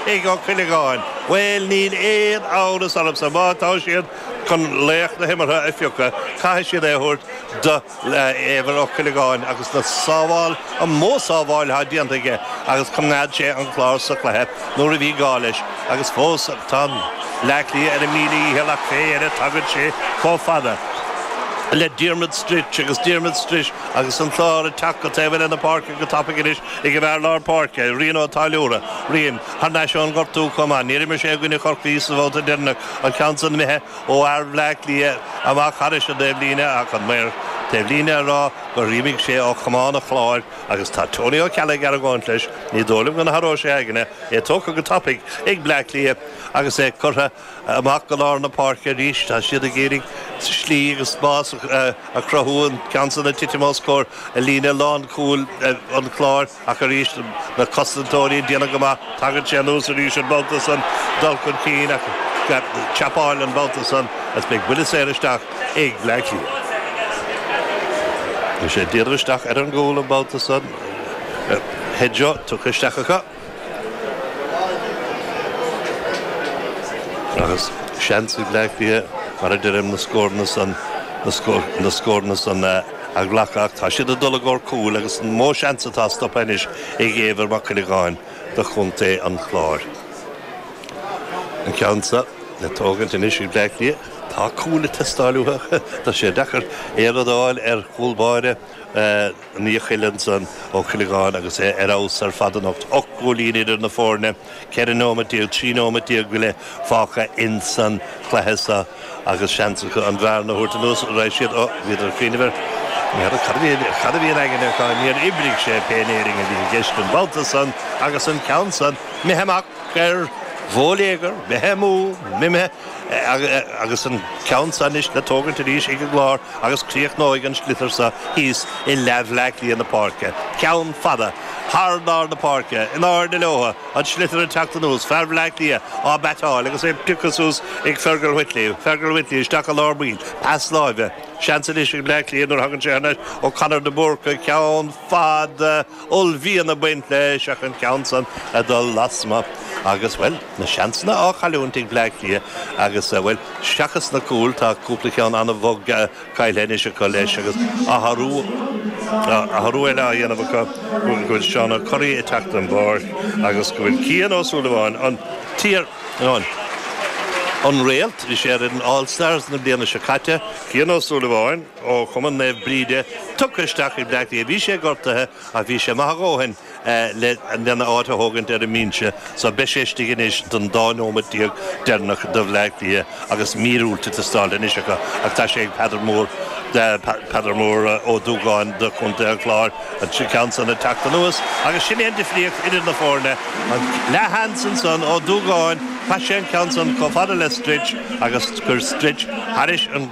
ag Ó Cuileagáin, Bhuel níl aon amhras ormsa má tá siad chun laoch na himeartha a phiocadh caithfidh siad é a thabhairt do Éibhear Ó Cuileagáin agus na sábháil an mó sábháil atá déanta aige agus coimeád sé an Clár sa chluiche nuair a bhí gá leis agus fós tá Bleá Cliath ar a míle dhícheall ach féach air tagann sé chomh fada le Diarmuid Stritch agus Diarmuid Stritch agus an Clár ag teacht go taobh eile na páirce go tapaidh anois. Ag an bhfear lár páirce, Rian Ó Táilliúra, Rian, thar n-ais ón gortú chomh maith. Níor imir sé i gcoinne Chorcaí sa bhabhta deireanach, an ceann san imithe ó fhear Bhleá Cliath amach thar an dtaobhlíne ach an maor taobhlíne á rá gur imigh sé ó chamán an Chláir agus tá Tony Ó Ceallaigh ag argóint leis, ní dóigh liom go n-athróidh sé a aigne, é tógtha go tapaidh ag Bleá Cliath agus é curtha Amach go lár na páirce arís, tá siad ag iarraidh slí agus spás a chruthú, an ceann san ag titim os comhair líne lánchúil an Chláir ach arís na cosantóirí ag déanamh go maith. Tagann sé anuas arís an babhta san, dul chun cinn á tharpáil an babhta san is beidh buille saor isteach ag Bleá Cliath. Beidh sé díreach isteach ar an gcúl an babhta san. Headshot tugtha isteach acu. Agus seans ag Bleá Cliath, mar a deirim, na scóranna san na scóranna san a ghlacadh ach tá siad ag dul i gcomhair cúil agus an mó seans atá stoptha anois ag Éibhear Mac Cuileagáin do chontae an Chláir. An ceann seo le tógaint anois ag Bleá Cliath. Tá cúil ag teastáil uathu. Tá sé deacair aon rud a fháil ar chúl báire. Ní chuireann san Ó Cuileagáin agus é ar fheabhas ar fad anocht. Ocht gcúilín idir na foirne, ceithre nóiméad déag, trí nóiméad déag go leith fágtha ins an chluiche seo agus seans acu an bhearna a thabhairt anuas a raibh siad. Ó, bhíodar ní fheadar cad a bhí, cad a bhí in aigne acu? Níor oibrigh sé, pé in Éirinn a bhí i gceist an babhta san agus an ceann san. Imithe amach ar bóiléagar, imithe amú, imithe. agus an ceann seo anois le tógaint arís ag an gClár agus críochnóidh an sliotar seo thíos i leath Bhleá Cliath na páirce. Ceann fada, thar lár na páirce, in airde leotha, an sliotar ag teacht anuas, fear Bhleá Cliath á beateáil agus é pioctha suas ag Fergal Whitley. Fergal Whitley isteach i lár baill, pas láimhe. Seans anois ag Bleá Cliath nuair a thagann sé thar n-ais, ó Conor de Búrca, ceann fada, uaillmhian ag baint leis ach an ceann san ag dul lasmuigh agus, bhuel, na seansanna á gcailliúint ag Bleá Cliath agus, bhuel, seachas na cúil, tá cúpla ceann an-bhog caillte anois acu leis agus athrú, athrú eile á dhéanamh acu go bhfuil Seán Ó Curraoin ag teacht ar an bpáirc agus go bhfuil Cian Ó Súilleabháin, an t-iar, an, an réalt, bhí sé ar an All Stars na bliana seo caite, Cian Ó Súilleabháin. ó Chumann Naomh Bríde, tugtha isteach ag Bleá Cliath. Bhí sé gortaithe ach bhí sé maith a dhóthain lena áit a thógaint ar an mbinse so beidh sé istigh anois don dá nóimeat déag deireanach do Bhleá Cliath agus míorúilt ag teastáilt anois acu ach tá sé ag Peadar Mór, Peadar Mór Ó Dúgáin do Chontae an Chláir, an ceann san ag teacht anuas agus sin é an difríocht idir na foirne, an leathsheans ansan, Ó Dúgáin, chaith sé an ceann san chomh fada le Stritch agus chuir Stritch thairis an.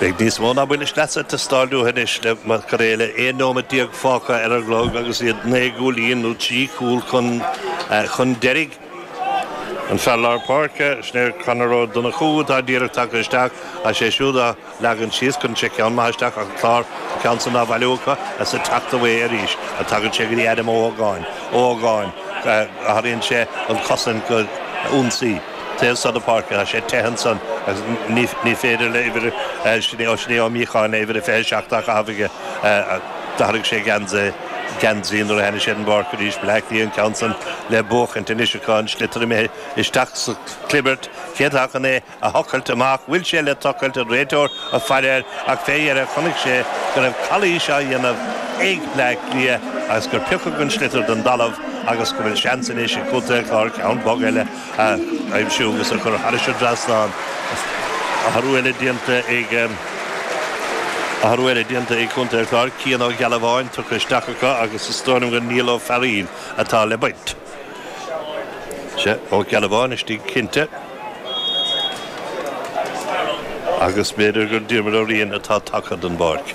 Beidh níos mó ná buille sleasa ag teastáil uathu anois le cur é le 11 nóimeat fágtha ar an gclog agus iad naoi gcúilín nó trí chúl chun deiridh. An fear lár páirce, sin é Conor Ó Donnchú, atá díreach tagtha isteach is é siúd á leagan síos chuir sé ceann maith isteach ach an Clár ceann san á bhailiú acu is ag teacht amach arís a tagann sé go dtí Adam Ó hÓgáin. Ó hÓgáin, athraíonn sé an chosaint go hionsaí. Téann Sá na Páirce, tá sé te ansan agus ní féidir le uimhir, Shane Ó Míocháin uimhir a 27 á chaitheamh aige. D'athraigh sé geansaí nuair a tháinig sé don bpáirc arís. Bleá Cliath an ceann san le buachaint anois acu, an sliotar imithe isteach sa chlibirt. Cé atá chun é a thochailt amach? Bhfuil sé le tochailt? An réiteoir ag faire air ach fé dheireadh chonaic sé go raibh calaois á dhéanamh ag Bleá Cliath agus gur piocadh an sliotar den dtalamh agus go bhfuil seans anois ag Contae an Chláir ceann bog eile a aimsiú agus a chur thairis an dtrasnán. Athrú eile déanta ag Athrú eile déanta ag Contae an Chláir, Cian Ó Gealbháin tugtha isteach acu agus is dóigh liom gur Niall Ó Fearaíl atá le baint. Sea, Ó Gealbháin istigh cinnte. Agus b'fhéidir gur Diarmuid Ó Riain atá tagtha den bpáirc.